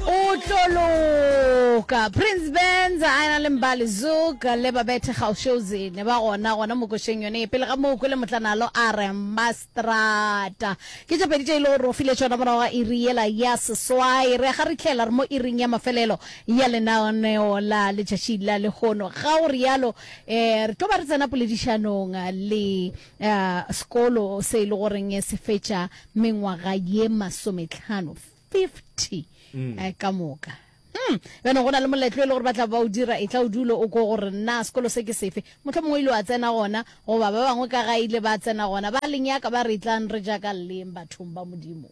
o tlo loka prince bands a na le mbali zuk le babethe gaushozi ne ba gona gona mokošeng yone e pele ga moo kwele motlanalo a re mastrata ke tše pedi tše e le gore o file tšona morago ga iri yela ya seswai re ga re tlhela re mo iring ya mafelelo ya lenaoneo la letšatši la lehono ga o rialo um re tlo ba re tsena poledišanong le ya sekolo se e le goreng se fetša mengwaga ye masometlhano 50 eh, ka moka Hmm. bjana go na le moletlo e le gore ba tla ba o dira e tla o dulo o ko gore nna sekolo se ke sefe motlho mongwe ile wa tsena gona goba ba bangwe ka ga ile ba tsena gona ba lenyaka ba re tlang re jaaka leng bathong ba modimo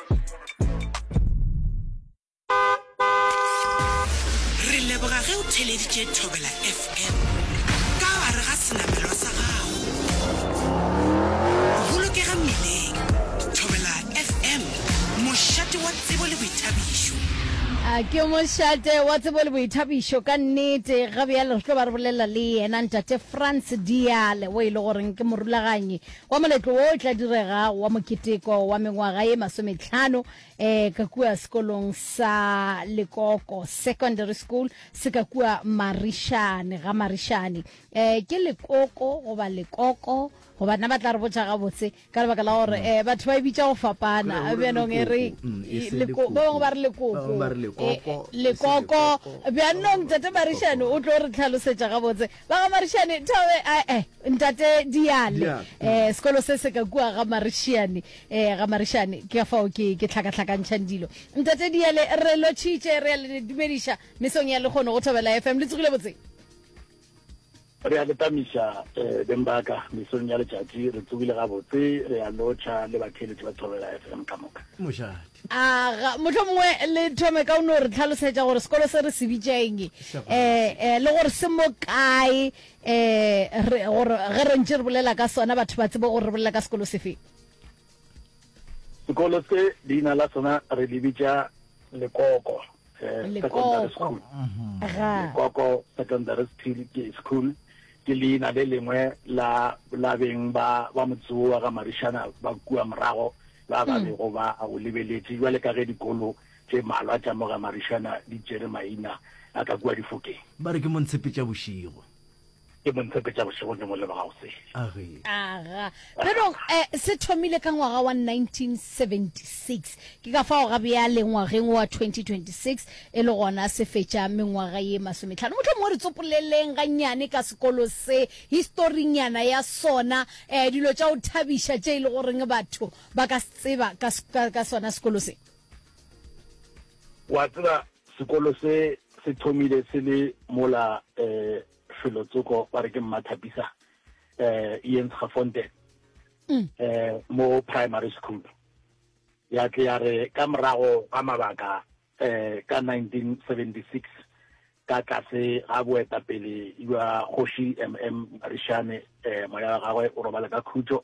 Re leboga ge o theleditše Thobela FM ka gare ga senamelwa sa gago. Bolokega mmileng. Thobela FM, mošate wa tsebo le boithabišo. A ke mošate wa tsebo le boithabišo ka nnete ga bjale re tlo ba re bolelela le yena ntate france diale o e le goreng ke morulaganyi Kwa moletlo wo o tla direga wa moketeko wa mengwaga ye masometlhano um ka kua sekolong sa Lekoko Secondary School se ka kua Marišane ga Marišane. Um ke Lekoko goba Lekoko? Goba nna ba tla re botša gabotse ka lebaka la gore um batho ba e bitša go fapana. Bjanong e re ba bangwe ba re Lekoko, Lekoko. Bjanong Tate Marišane o tlo re tlhalosetša gabotse. Ba ga Marišane, Thabe, ae. Ntate Diale, eh, sekolo se se ka kua ga Marishane, eh, ga Marishane, ke fao ke, ke tlhakatlhakantšhang dilo. Ntate Diale, re lotšhitše, re a le dumediša mesong ya lekgono go Thobela FM, le tsogile botse? re a letamiša eh, beng baka mesong ya letšatši re tsogile gabotse re a lotšha le batheeletši ba thobela fm ka moka mošate aga motlho mongwe le thome ka o no re tlhalosetša gore sekolo se re se bitšaeng um eh, eh, le gore se mo kae Ee, gore ge re ntše re bolela ka sona batho ba tsebe gore re bolela ka sekolo sefe. Sekolo se leina la sona re le bitša Lekoko eh, Secondary School. Lekoko Secondary School ke leina le lengwe la la beng ba ba motsewo wa ga marišana ba kua morago ba ba hmm. bego ba o lebeletše jwale ka ge dikolo Tše malwa tša mogamarišana di tšere maina a ka kua difokeng. Ba re ke mo ntshepetša bošego. Ke mo ntshepetša bošego ke mo leboga gosele. Age. Aga. Pero eh, se thomile ka ngwaga wa 1976. Ke ka fao ga bjale ngwageng wa 2026 e le gona se fetša mengwaga ye masometlhano. Mohlomongwe re tsopoleleng gannyane ka sekolo se, historinyana ya sona, eh, dilo tša go thabiša tše e le goreng batho ba ka se tseba ka, ka, ka sona sekolo se. Wa tseba sekolo se se thomile se le mola um felo tsoko ba re ke mmathapisa um iens gafonte um mo primary school ya tle ya re ka morago ga mabaka um ka 1976 ka tlase ga boetapele jwa kgoši mm marishane um moya wa gagwe o robala ka khutšo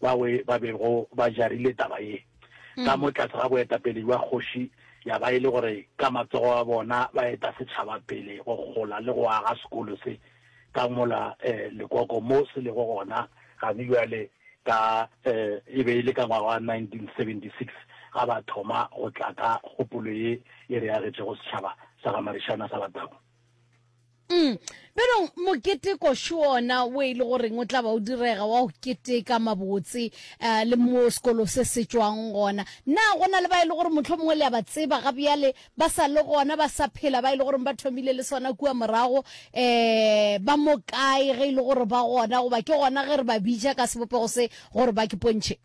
bawe ba bego ba jarile taba ye ka mo tlase ga boetapele jwa kgoši, ya ba e le gore ka matsogo a bona ba eta setšhaba pele go gola le go aga sekolo se ka mola eh, Lekoko mo se lego gona gane bjale ka eh, e be e le ka ngwaga wa 1976 ga ba thoma go tla ka kgopolo ye e re agetšego setšhaba sa ga Marišana sa Batau. Mm. Pelong moketeko šona o e le goreng o tla ba o direga wa go keteka mabotse uh, le mo sekolo se se tswang gona na go na le ba e le gore motlho mongwe le ya ba tseba ga bjale ba sa le gona ba sa phela ba e le goreng ba thomile le sona kua morago um ba mo kae ge e le gore ba gona goba ke gona ge re ba bitša ka sebopego se gore ba ke pontšhe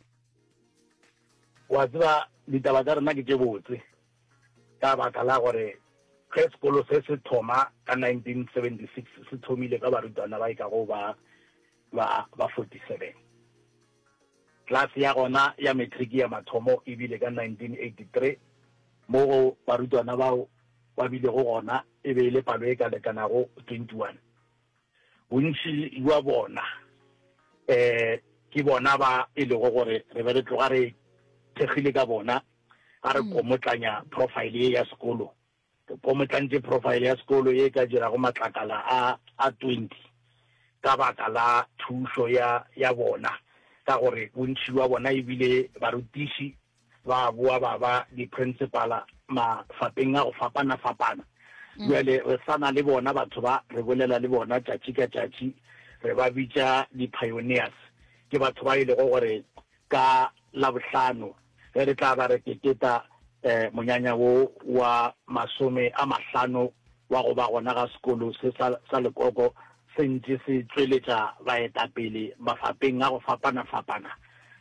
wa tseba ditaba tsa rena ke tše botse Ka baka la gore ge sekolo se se thoma ka 1976, se thomile ka barutwana ba e ka go ba ba ba 47. Klase ya gona ya matriki ya mathomo e bile ka 1983, mo go barutwana bao ba bilego gona e be e le palo e ka lekanago 21. Bontši bja bona ke bona ba e lego gore re be re tloga re thekgile ka bona ga re komotlanya profile ye ya sekolo. Re komotlantše profile ya sekolo ye e ka dirago matlakala a a 20 ka baka la thušo ya bona ka gore bontši bja bona e bile barutiši. ba boa ba ba diprinsipala mafapeng a go fapana-fapana. Bjale re sa na le bona batho ba, re bolela le bona tšatši ka tšatši, re ba bitša di-pioneers. Ke batho ba e lego gore ka Labohlano ge re tla ba re keteta um monyanya wo wa masome a mahlano wa go ba gona ga sekolo se sa, sa lekoko se ntše se tšweletša baetapele mafapeng a go fapana-fapana.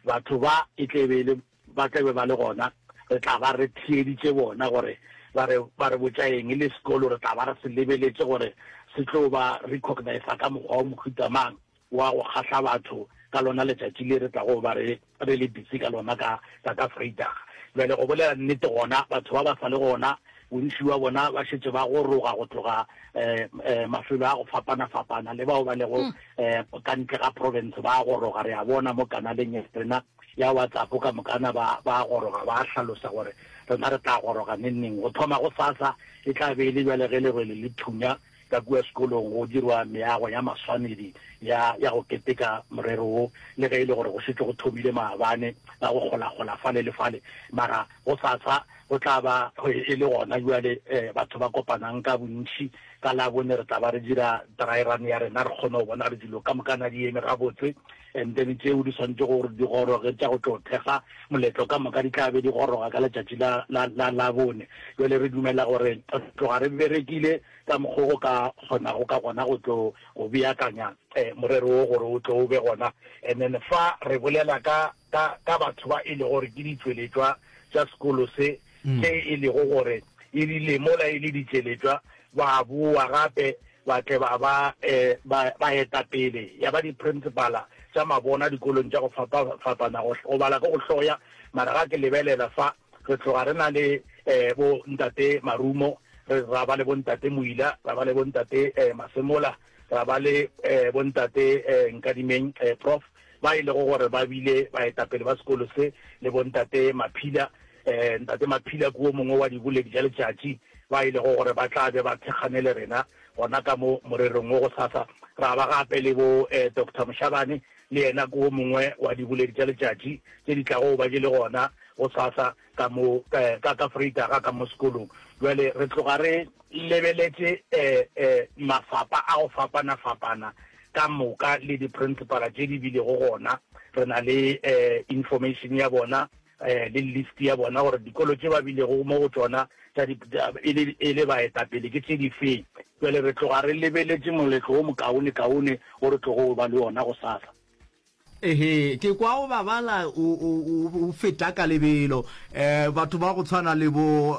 Batho ba e tla be e le, ba tla be ba le gona, re tla ba re theeditše bona gore ba re, ba re botša eng, e le sekolo re tla ba re se lebeletše gore se tlo ba recognisa ka mokgwa wo mohuta mang. wa go kgahla batho ka lona letšatši le re tlago ba re re le busy ka lona ka tša ka Vrydag. Bjale go bolela nnete gona batho ba ba sa le gona bontši bja bona ba šetše ba goroga go tloga um um mafelo a go fapana-fapana le bao ba lego um ka ntle ga province ba goroga re a bona mo kanaleng ya rena ya WhatsApp ka mokana ba ba goroga ba hlalosa gore rena re tla goroga neng-neng go thoma go sasa e tla be e le bjale ge lerwele le thunya Ka kua sekolong go dirwa meago ya maswanedi ya, ya go keteka morero wo, le ge e le gore go šetše go thomile maabane a go kgolagola fale le fale. Mara gosasa go tla ba e le gona bjale eh, batho ba kopanang ka bontši. Ka Labone re tla ba re dira draerane ya rena, re kgone go bona gore dilo ka mokana di eme gabotse. And then tšeo di swanetšego gore di goroge tša go tlo thekga moletlo ka moka di tla be di goroga ka letšatši la, la, la Labone. Bjale re dumela gore re tloga re berekile ka mokgo go ka kgonago ka gona go tlo go beakanya eh, morero wo gore o tlo o be gona. And then fa re bolela ka, ka, ka batho ba e lego gore ke ditšweletšwa tša sekolo se, tše e lego gore e rile mola e le ditšeletšwa ba bowa gape ba tle ba ba baetapele ya ba diprinsipala tša mabona dikolong tša go fapafapana. Go bala ke go hloya, mara ga ke lebelela fa, re tloga re na le bo Ntate Marumo, ra ba le bo Ntate Moila, ra ba le bo Ntate Masemola, ra ba le bo Ntate Nkadimeng, Prof, ba e lego gore ba bile baetapele ba sekolo se, le bo Ntate Maphila. Ee, Ntate Maphila ke wo mongwe wa diboledi tša letšatši ba e lego gore ba tla be ba thekgane le rena gona ka mo morerong wo gosasa. Ra ba gape le bo eh, Doctor Moshabane, le yena ke wo mongwe wa diboledi tša letšatši tše di tlago go ba di le gona gosasa ka mo eh, ka ka Vrydaga ka mo sekolong. Bjale re tloga re lebeletše eh, eh, mafapa a go fapana-fapana ka moka le di-principala tše di bilego gona. Re na le eh, information ya bona le list ya bona gore dikolo tše ba bilego mo go tšona e le baetapele ke tše difeng. Bjale re tloga re lebeletše moletlo wo mokaonekaone wo re tlogo ba le wona gosasa. Ehe, ke kwa o babala o feta ka lebelo. Batho ba go tshwana le bo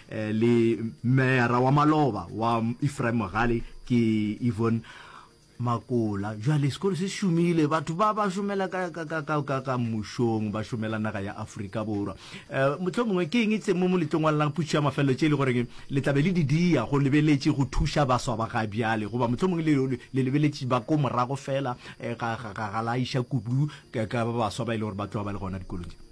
Eh, le meyara wa maloba wa efraim mogale ke evon makola jale sekolo se šomile batho ba ba šomela ka mmušong ba šomela naga ya aforika borwa um motlho mongwe ke eng tse mo moletlong wa lelang putšo ya mafelelo tše e le goreng le tlabe le didia go lebeletše go thuša baswa ba ga bjale goba motlho mongwe le lebeletše ba ko morago fela eh, ga la iša kudu ka ba baswa ba e le gore ba tloga ba le gona dikolong tše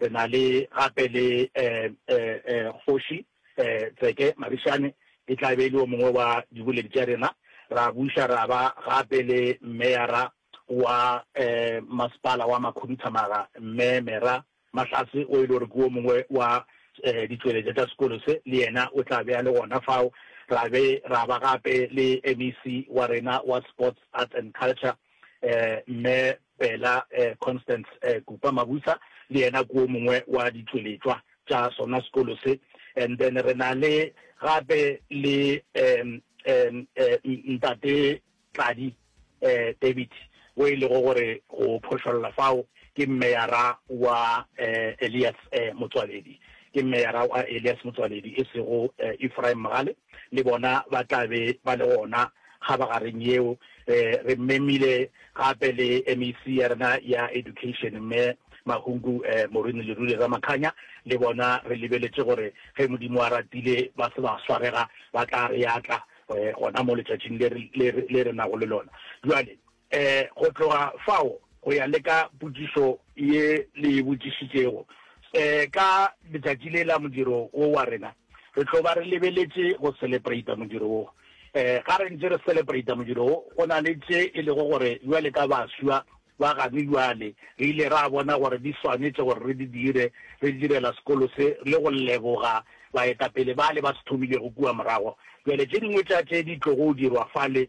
Re na le gape le Kgoši Tseke Mabishane, e tla be e le yo mongwe wa diboledi tša rena. Ra buša ra ba gape le Meyara wa Masepala wa Makhuduthamaga, Mme Mera Mahlatse, o e le gore ke wo mongwe wa ditšweletša tša sekolo se, le yena o tla be a le gona fao. Ra be ra ba gape le MEC wa rena wa Sports, Arts and Culture, Mme Bela Constance Kupa Mabusa le yena ke wo mongwe wa ditšweletšwa tša sona sekolo se. And then re na le gape le Ntate Tladi David wo e lego gore go phošolla fao ke meyara wa Elias Motsoaledi, ke meyara wa Elias Motsoaledi e sego Ephraim Mogale. le bona ba tla be ba le gona kgabagareng yeo. Re memile gape le MEC ya rena ya Education, Mme Mahungu Morwena Lerule Ramakhanya, le bona re lebeletše gore ge Modimo a ratile ba se ba swarega ba tla re atla gona mo letšatšing le re nago le lona bjale. E, go tloga fao go ya le ka potšišo ye le e botšišitšego, e, ka letšatši le la modiro wo wa rena, re tlo ba re lebeletše go selepreita modiro wo. E, ga re ntše re selepreita modiro wo, go na le tše e lego gore bjale ka baswa ba gane bjale, re ile ra bona gore di swanetše gore re di dire, re direla sekolo se le go leboga baetapele bale ba se thomilego kua morago. Bjale tše dingwe tša tše di tlogo dirwa fale.